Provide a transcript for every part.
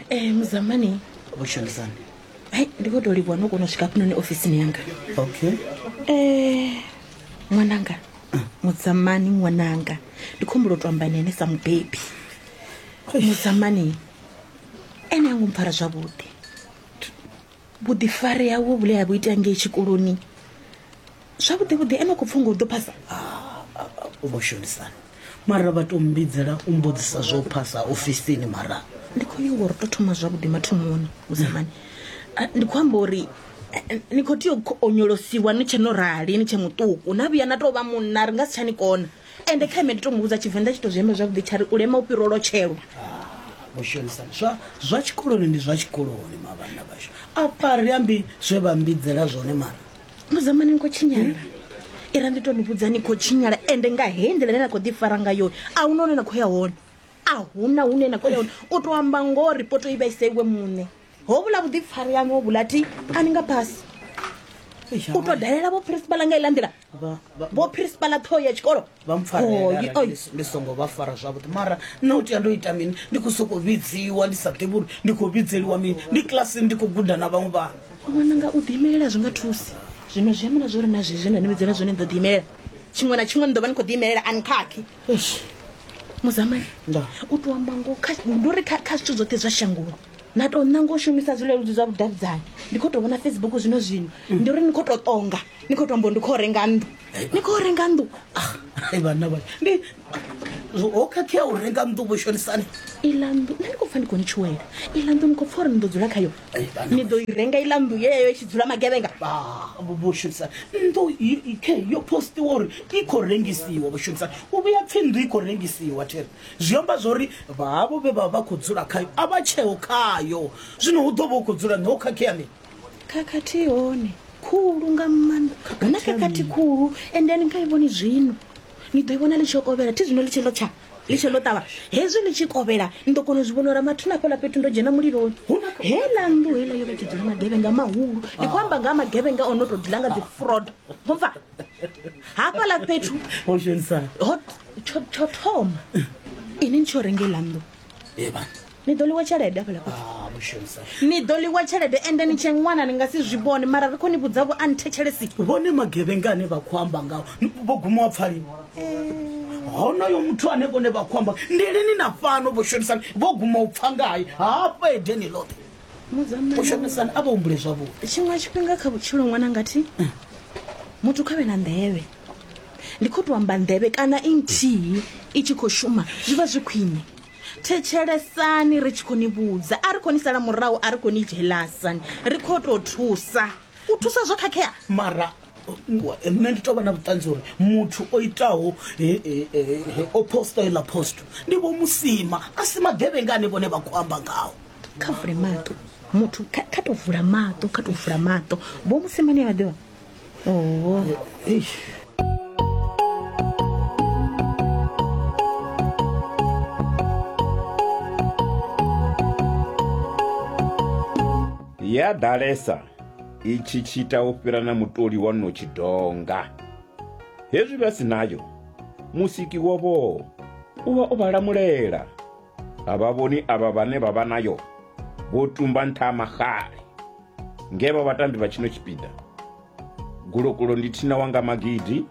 Eh, muzamani vhushandisani hai ndi khou tou livhuwa no kona u swika hafhanoni ofisini yanga okay Eh, ṅwananga mudzamani ṅwananga ndi khombulo to amba nene sa mubebi mudzamani ene ango mpfara zwavhuḓi vhuḓifari hawe vhule ha vhu ita ngei tshikoloni zwavhuḓi vhuḓi ene khou pfunga u ḓo phasa u vho shonisana mara vha to mbidzela u mbudzisa zwo phasa ofisini mara ndi khou nyanga uri to thoma zwavhuḓi mathomoni musamani ndi khou amba uri ni khou tea u onyolosiwa ni tshe no rali ni tshe muṱuku na vhuya na tou vha munna ri nga si tsha ni kona Ende kha ime ndi to muvhudza tshivenḓa tshi to zwi amba zwavhuḓi tsha ri u lema u fhira u lotshelwa. Vho shonisa zwa zwa tshikoloni ndi zwa tshikoloni mavhanda vhashu a fari ambi zwe vha mbidzela zwone mara muzamani ni khou tshinyala ira ndi to ni vhudza ni khou tshinyala ende nga he nḓila ine na khou ḓi fara nga yone a hu na hune na khou ya hone a hu na hune na khou ya hone u to amba ngoho ripoto i vha ise iwe muṋe ho vhula vhuḓipfari yaṋu ho vhula ti a ni nga phasi u to dalela vho phirisibaḽa nga iḽa nḓila vho principala ṱhoho ya tshikolo vha mpfarndi songo vha fara zwavhuḓi mara nna u tea ndo ita mini ndi khou sokou vhidziwa ndi sa ḓivhi uri ndi khou vhidzeliwa mini ndi kilasini ndi khou guda na vhaṅwe vhana wana nga u ḓiimelela zwi nga thusi zwino zwi amana zwo ri na zwezwi nda ni vhidzela zwone ni ḓo ḓiimelela tshiṅwe na tshiṅwe ni ḓo vha ni khou ḓiimelela ani khakhi muzamani u tou amba ngo ndo ri kha zwithu zwoṱhe zwa shangoni na tou ṋanga u shumisa zwileludzi zwa vhudavhidzani ndi khou tou vhona facebook zwino zwino ndi uri ni khou tou ṱonga ni khou tou mbo ndi khou renga nnḓu ni khou renga nnḓu ah, vhanna vha ndi ho khakhea u renga nnḓu vho shonisani iḽa nnḓu nṋe ndi khou pfa ndi khou ni tshuwela iḽa nnḓu ni khou pfa uri ni ḓo dzula khayo ni ḓo i renga iḽa nnḓu yeyo i tshi dzula magevhenga vho shonisani nnḓu khe yo postiwa uri i khou rengisiwa vho shonisani u vhuya pfhi nnḓu i khou rengisiwa thero Zwi amba zwori vha havho vhe vha vha khou dzula khayo a vha tsheho khayo. Zwino hu ḓo vha hu khou dzula ni ho khakhea mini? Khakhathi i hone khulu nga maanḓa. Hu na khakhathi khulu ende a ni nga i vhoni zwino. Ni ḓo i vhona ḽi tshi kovhela thi zwino ḽi tshi ḽo tsha ḽi tshi ḽo ṱavha. Hezwi ḽi tshi kovhela ni ḓo kona u zwi vhona uri mathina hafhaḽa fhethu ndo dzhena muliloni. Heiḽa nnḓu heiḽa yo vha i tshi dzula magevhenga mahulu. Ndi khou amba nga ha magevhenga o no tou dzula nga dzi frodo. Mupfa? hafhaḽa fhethu ho dzhenisa ho tsho tsho thoma ini ni tsho renga iḽa nnḓu ee bana ni ḓo ḽiwa tshelede hafhaḽa fhethu ah mushonisa ni ḓo ḽiwa tshelede ende ni tshe ṅwana ni nga si zwi vhone mara ri khou ni vhudza vho a ni thetshelesi vhone magevhenga ane vha khou amba ngaho vho guma wa pfali honoyo muthu ane vhone vha khou amba ndi lini na fhano vho shonisani vho guma u pfa ngaye hafha edeni ḽoṱhe u shumisana a vha humbule zwavhuḓi tshiṅwe tshifhinga kha vhutshilo ṅwana ngathi muthu kha vhe na nḓevhe ndi khou tou amba nḓevhe kana i nthihi i tshi khou shuma zwi vha zwi khwine thetshelesani ri tshi khou ni vhudza a ri khou ni sala murahu a ri khou ni dzhelasani ri khou tou thusa u thusa zwo khakhea mara nṋe ndi tovha na vhuṱanzi uri muthu o itaho o posta iḽa post ndi vho musima a si magevhenga ane vhone vha khou amba ngaho kha vule maṱo muthu kha to vula maṱo kha to vula maṱo vho musima ni a ḓivha oo ya ḓalesa itshi tshi ita u fhira na mutoli wa no tshidonga hezwi vha si nayo musiki wovho u vha o vha lamulela a vha vhoni avha vhane vha vha nayo vho tumba nṱha ha maxale nge vha vhatambi vha tshino tshipiḓa gulokulo ndi thina wanga magidi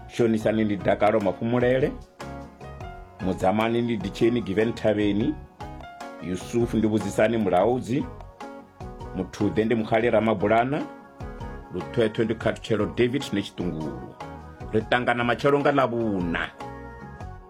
shonisani ndi dakalo mafhumulele mudzamani ndi ditsheni given thavheni yusufu ndi vhudzisani mulaudzi muthuḓe ndi mukhali ramabulana luthwethwe ndi khathutshelo david ne tshiṱungulu ri ṱangana matshelo nga ḽavhuna